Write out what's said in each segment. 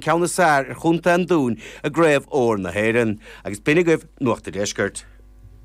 ceann is fearr ar Chontae an Dúin i gCraobh Óir na hÉireann. Agus b'shin agaibh Nuacht a' Deiscirt.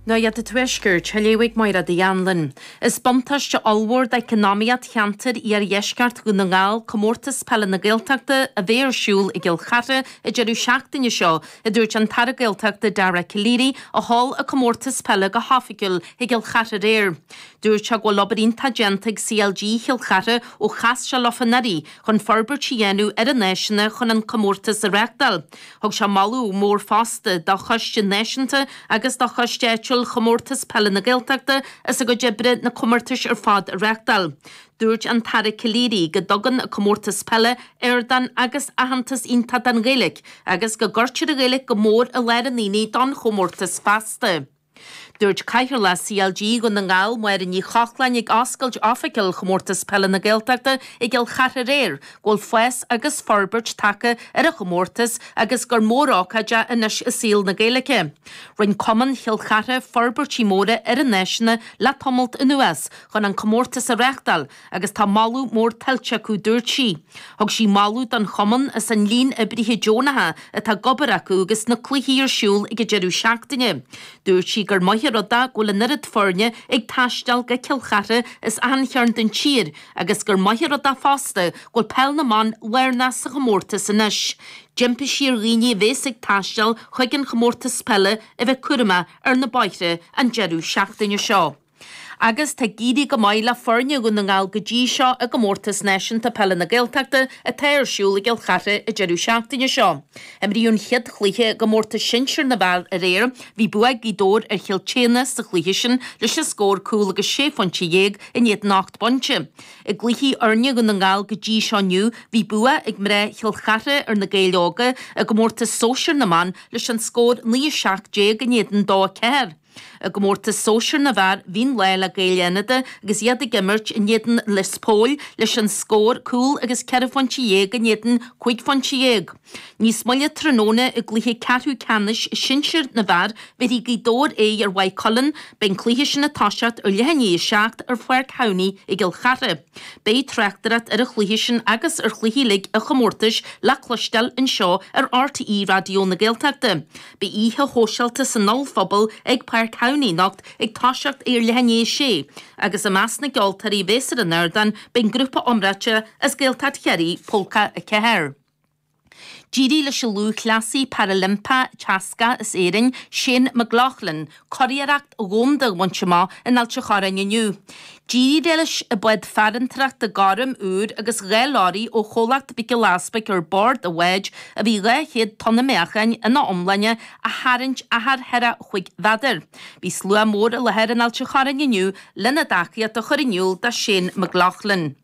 Nuacht a' Tuaiscirt, a léadh ag Máire Uí Annluin. Is buntáiste ollmhór d'eacnamaíocht cheantair iardheisceart Dhún na nGall Comórtas Peile na Gaeltachta a bheidh ar siúl i gCill Chartha an deireadh seachtaine seo, a dúirt an tAire Gaeltachta Dara Calleary, a sheol an comórtas peile go hoifigiúil i gCill Chartha aréir. Dúirt sé go bhfuil obair iontach déanta ag CLG Chill Chartha ó chas sé leo anuraidh, chun forbairt a dhéanamh ar a n-áiseanna chun an comórtas a reachtáil. Thug sé moladh mór fosta do Choiste Náisiúnta agus do Choiste Áitiúil Chomórtas Peile na Gaeltachta as a gcuid oibre na comórtais ar fad a reachtáil. Dúirt an tAire Calleary go dtugann an Comórtas Peile ardán agus aitheantas iontach don Ghaeilge agus go gcuirtear an Ghaeilge go mór i lár an aonaigh don chomórtas fosta. Dúirt Cathaoirleach CLG Dhún na nGall, Máire Ní Chochláin, ag oscailt oifigiúil Chomórtas Peile na Gaeltachta i gCill Chartha aréir, go bhfuil fás agus forbairt tagtha ar an chomórtas agus gur mórócáid é anois i saol na Gaeilge. Rinne cumann Chill Chartha forbairtí móra ar a n-áiseanna le tamalt anuas chun an comórtas a reachtáil, agus tá moladh mór tuillte acu dúirt sí. Thug sí moladh don Chumann as an líon oibrithe deonacha atá ag obair acu agus na cluichí ar siúl ag an deireadh seachtaine. Dúirt sí gur maith an rud é go bhfuil an oiread foirne ag taisteal go Cill Chartha as achan chearn den tír agus gur maith an rud é fosta go bhfuil Peil na mBan lárnach sa chomórtas anois. D'impigh sí ar dhaoine a bhéas ag taisteal chuig an Chomórtas Peile a bheith cúramach ar na bóithre an deireadh seachtaine seo. agus tá ag éirí go maith le foirne Dhún na nGall go dtí seo i gComórtas Náisiúnta Peile na Gaeltachta atá ar siúl i gCill Chartha an deireadh seachtaine seo. Imríodh an chéad chluiche i gcomórtas sinsear na bhfear aréir. Bhí bua ag Gaoth Dobhair ar Chill tSéadhna sa chluiche sin leis an scór, cúl agus sé phointe dhéag in éadan ocht bpointe. I gcluichí fhoirne Dhún na nGall go dtí seo inniu, bhí bua ag mná Chill Chartha ar na Gaeil Óga i gcomórtas sóisir na mban leis an scór naoi a seacht déag in éadan dó a ceathair. I gcomórtas sóisear na bhfear, bhí an lá le Gaeil Fhánada agus iad ag imirt in éadan Lios Póil leis an scór cúl agus ceithre phointe dhéag in éadan cúig phointe dhéag. Níos moille tráthnóna i gcluiche ceathrú ceannais sinsir na bhfear bhéarfaidh Gaoth Dobhair aghaidh ar Mhaigh Cuilinn. Beidh an cluiche sin ag toiseacht ar leath i ndiaidh a seacht ar Pháirc Thamhnaigh i gCill Chartha. Beidh tráchtaireacht ar an chluiche sin agus ar chluichí uilig an chomórtais le cloisteáil anseo ar rte Raidió na Gaeltachta. Beidh oíche shóisialta san ollphuball ag Páirc Thamhnaigh anocht ag toiseacht ar leath i ndiaidh a sé, agus i measc na gceoltóirí a bheas ar an ardán beidh an grúpa iomráite as Gaeltacht Chiarraí, Pólca 4. D'éirigh leis an lúthchleasaí parailimpeach teascach as Éirinn, Shane McLoughlin, Curiarracht dhomhanda a bhaint amach in Ailt an Chorráin inniu. D'éirigh leis an bád farantóireachta gorm úr agus dhá leoraí ó chomhlacht Mhic Giolla Easpaig ar bord an bháid a bhí dhá chéad tonna meáchain ina iomláine a tharraingt achar thar chúig mhéadar. Bhí slua mór i láthair in Ailt an Chorráin inniu lena dtacaíocht a chur in iúl do Shane McLoughlin.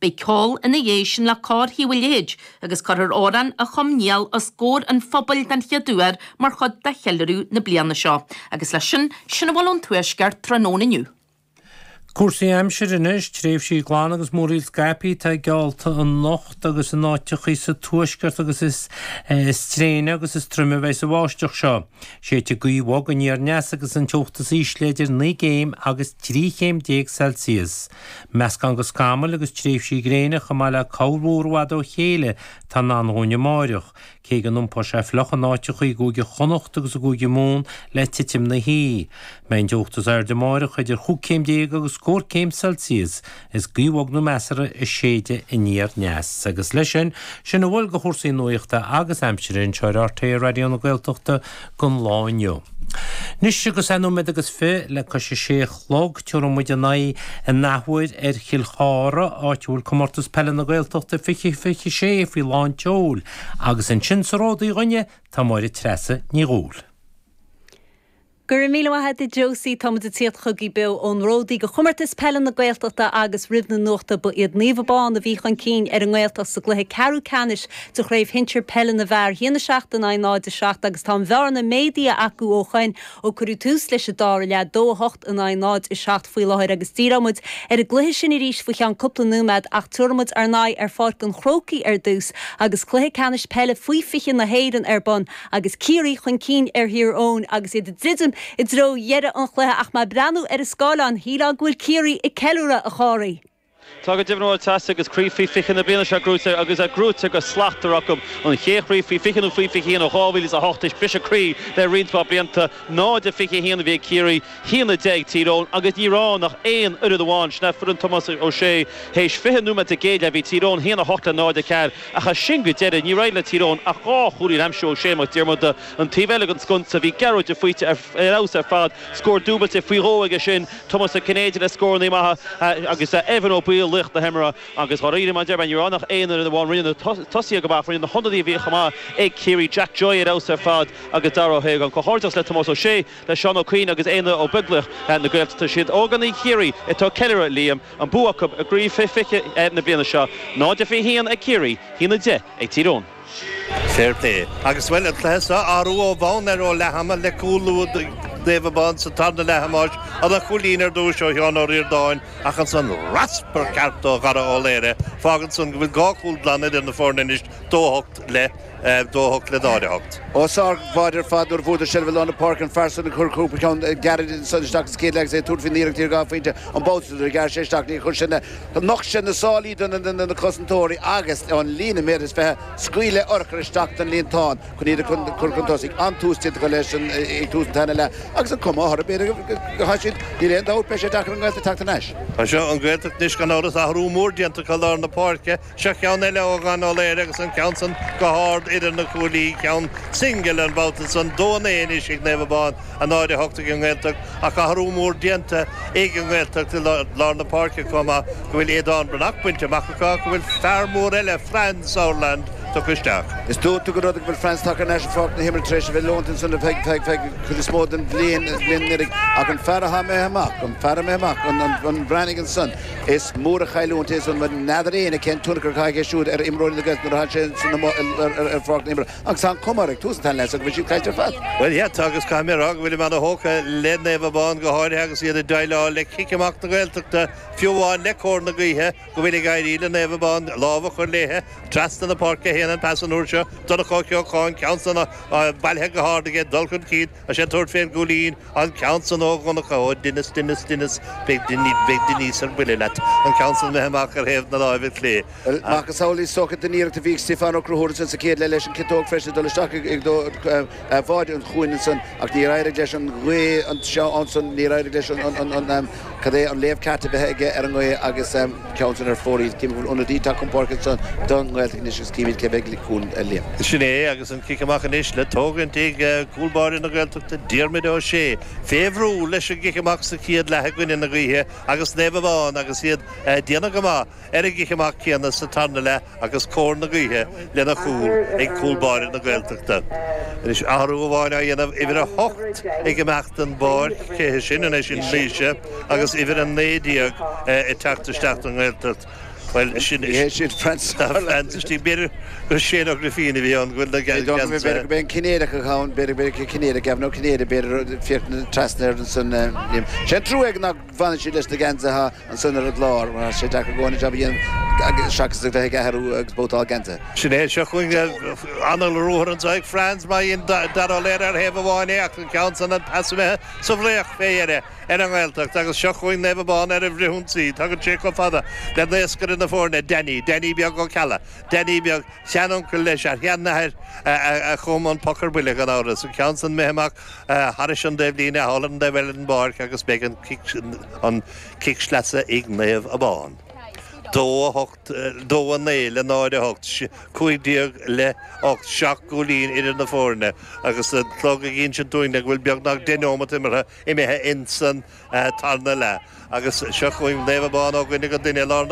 Beidh ceol ina dhiaidh sin le Cór Thaobh a' Leithid, agus cuirfear amhrán a chum Niall os gcomhair an phobail den chéad uair mar chuid de cheiliúradh na bliana seo. Agus leis sin, sin a bhfuil ón Tuaisceart tráthnóna inniu. Cúrsaí aimsire anois, tréimhsí glana agus múraíl scaipthe atá geallta anocht agus in áiteachaí sa tuaisceart agus is tréine agus is troime a bheidh sa bháisteach seo. Séidfidh gaoth bhog aniar aneas agus an teocht is ísle idir naoi gcéim agus trí chéim déag Celsius. Meascán de scamaill agus tréimhsí gréine chomh maith le corrmhúr i bhfad ó chéile atá i ndán dhúinn amáireach, cé go n-iompóidh sé fliuch in áiteachaí i gCúige Chonnacht agus i gCúige Mumhan le titim na hoíche. Beidh an teocht is airde amáireach idir chúig céim déag agus scór céim Celsius. Is gaoth bhog nó measartha ag séideadh aniar aneas. Agus leis sin, sin a bhfuil de chúrsaí nuachta agus aimsire anseo ar RTÉ Raidió na Gaeltachta, don lá inniu. Anois agus é nóiméad agus fiche le cois a sé a chlog, tabharfaimid ár n-aghaidh in athuair ar Chill Chartha, áit a bhfuil Comórtas Peile na Gaeltachta 2026 faoi lán tseoil, agus ansin sa Ródaí dhúinne tá Máire Treasa Ní Dhubhghaill. Go raibh míle maith a'd a Josie, táimid ag tíocht chugaibh beo ón Ródaí ag Comórtas Peile na Gaeltachta agus roimh na nuachta ba iad Naomh Abán a bhí chun cinn ar an nGaeltacht sa gcluiche ceathrú ceannais de Chraobh Shinsir Peile na bhFear 1, 7 in aghaidh 0, 7 agus tá an bhearna méadaithe acu ó shoin ó cuireadh tús leis an dara leath, 2, 8 in aghaidh 0, 7 faoi láthair agus díreoimid ar an gcluiche sin arís faoi cheann cúpla nóiméad ach tabharfaimid ár n-aghaidh ar Pháirc an Chrócaigh ar dtús agus Cluiche Ceannais Peile Faoi 20 na hÉireann ar bun agus Ciarraí chun cinn ar Thír Eoghain agus iad ag druidim i dtreo dheireadh an chluiche ach mé ag breathnú ar an scáileán shílfeá go bhfuil Ciarraí ag ceiliúradh a Chárthaigh. Tá go deimhin a Mháire Treasa agus craobh faoi fiche na bliana seo gnóite agus í gnóite go slachtmhar acu. An chéad chraobh faoi fiche nó faoi fiche haon ó 2008 théis briseadh croí le roinnt mhaith blianta. 0, 21 a bhí ag Ciarraí, haon a deich ag Tír Eoghain agus ní raibh ach aon fhoireann amháin sin í foireann Tomás Ó Sé. Théis fiche nóiméad den gcéad leath bhí Tír Eoghain haon, 8 le 0, 4 ach as sin go deireadh níor éirigh le Tír Eoghain ach dhá chúilín a aimsiú ó Shea Mac Diarmada. An taobh eile den sconsa bhí Gearóid de Faoite ar fheabhas ar fad, scór dúbailte faoi dhó aige sin, Tomás Ó Cinnéide le scórannaí maithe agus Evan Ó Baoill laoch na himeartha agus dháiríre mar a deir mé ní raibh ann ach aon fhoireann amháin rinne na tosaithe go maith ach rinne na hionadaithe a bhí chomh maith ag Ciarraí Jack Joy ar fheabhas ar fad agus Dara Ó hÓgáin. Comhghairdeachas le Tomás Ó Sé, le Seán Ó Cuinn agus Aodhna Ó Beaglaoich na Gaeltachta. Siad ógánaigh Chiarraí atá ag ceiliúradh Liam, an bua acu i gcraobh faoi 20 na bliana seo, 0-21 ag Ciarraí, 1-10 ag Tír Eoghain. Fair play. Agus bhuel, an cluiche seo athrú ó bhonn air ó leath ama le cúl luath do Naomh Abán sa tarna leath a Thomáis, ana-chúilín ar dtúis ó Sheán Ó Ríordáin ach ansan raspar ceart ó Dhara Ó Laoire. Fágann san go bhfuil dhá chúl glan idir na foirne anois, dó a hocht le dó a hocht le náid a hocht. Ó sár bháide ar fad nuair a bhuadar seilbh lár na páirce, an fear san ag cur cúpla ceann gearra isteach sa chéad leath agus é ag tabhairt faoin iarracht ar dhá phointe an babhta so nuair a ghearr sé isteach, níor chuir sin Nocht sé na sálaí do na cosantóirí agus, ón líne méadar is fiche, scaoil le urchar isteach don líontán chun iad a chur chun tosaigh. An-tús déanta acu leis an ag tús an tarna leath agus an cuma orthu b'fhéidir go gcaithfidh siad, níl aon dabht, beidh sé deacair an Ghaeltacht teacht ar ais. Tá seo an Ghaeltacht anois gan amhras, athrú mór déanta acu lár na páirce, seo ceann eile ó Dhara Ó Laoire agus an ceann san go hard idir na cuaillí, ceann singil an babhta san, dó a naoi anois ag Naomh Abán. náid a hocht ag an nGaeltacht ach athrú mór déanta ag an nGaeltacht i lár na páirce chomh maith go bhfuil Aodán Breathnach bainte amach acu ach go bhfuil fear mór eile, Franz Sauerland, tugtha isteach. Is iontach an rud go bhfuil Franz tagtha ar ais ar Pháirc na hImeartha tar éis a bheith leonta ansan ar feadh an chuid is mó den bhliain anuraidh ach an fear atá imithe amach, an fear a d'imigh amach, an Breathnach ansan, is mór an chailliúint é ansan mar n'fheadar éinne cén tionchar atá aige siúd ar imreoirí na Gaeltachta nuair atá sé ansan amuigh ar Pháirc na hImeartha. Ach tá an chuma ag tús an tarna leath so go bhfuil siad caillte ar fad. Bhuel, yeah, tá agus caithfidh mé a rá go bhfuilim ana-thógtha le Naomh Abán, go háirithe agus iad ag déileáil le cic amach na Gaeltachta, fiú amháin le cóir na gaoithe go bhfuil ag éirí le Naomh Abán lámh a chur léithe. Trasna na páirce a théann an pas an uair seo, Donncha Ó Ceocháin, ceann san, bailithe go hard aige, dul chun cinn. Tá sé ag tabhairt fén gcúilín, an ceann san ó Dhonncha Ó Dinis, Dinis, Dinis, beidh Dinis ar buile leat, an ceann san imithe amach ar thaobh na láimhe clé, Bhuel, macasamhail is dócha den iarracht a bhí ag Stiofán Ó Conchúir ansan sa chéad leath leis an ciotóg freisin ag dul isteach i dtreo bháide an chuain ansan ach níor éirigh leis an ghaoth anseo ansan, níor éirigh leis an Cad é an léamh ceart a bheith aige ar an ngaoth agus ceann san ar fóraoil. Cím go bhfuil ionadaí ag teacht chun páirce ansan don nGaeltacht anois agus címíd cé bheidh chugainn, a Liam. Sin é agus an cic amach anois le tógaint ag cúl báire na Gaeltachta Diarmuid Ó Sé. Fé bhrú leis an gcic amach sa chéad leath i gcoinne na gaoithe agus Naomh Abán agus iad a' déanamh go maith. Ar an gcic amach céanna sa tarna leath agus cóir na gaoithe lena chúl ag cúl báire na Gaeltachta. Anois athrú amháin á dhéanamh, uimhir a hocht ag imeacht den bpáirc, cé hé sin? Anois sin Laoise agus uimhir a naoi déag ag teacht isteach don nGaeltacht. Bhuel sin ní hé sin Franz Sauerland. Istigh, b'fhéidir gur Shane Ó Grifín a bhí ann go bhfuil na Gaeil gan B'fhéidir gurb é an Cinnéideach atá ann, b'fhéidir gurb é Cinnéide, Gavin Ó Cinnéide b'fhéidir, féach trasna ar an, is trua é nach bhfanann siad leis na geansaithe. ansin ar an gclár mar tá sé deacair go leor jab a dhéanamh seachas a bheith ag athrú agus babhtáil geansaithe. Sin é seo chugainn ana-ruathar anso ag Franz mar dhein Daire Ó Laoire ar thaobh amháin é ach an ceann san an pas imithe sa bhfraoch fé dheire ar an nGaeltacht agus seo chugainn Naomh Abán ar an bhfrithionsaí. Tagann sé chomh fada le naoscaire na foirne, Danny, Danny Beag Ó Ceallaigh. Danny beag, shean-uncail leis a sheanathair a chum an poc ar buile gan amhras, an ceann san imithe amach Thairis an dtaobhlíne thall ar an taobh eile den bpáirc agus beidh an an cic sleasa ag Naomh Abán. Dó a hocht, dó a naoi le náid a hocht, cúig déag le hocht, seacht gcúilín idir na foirne agus an clog ag insint dúinn le go bhfuil beagnach deich neomat imeartha imithe ins an tarna leath agus seo chugainn Naomh Abán ó dhuine go duine i lár na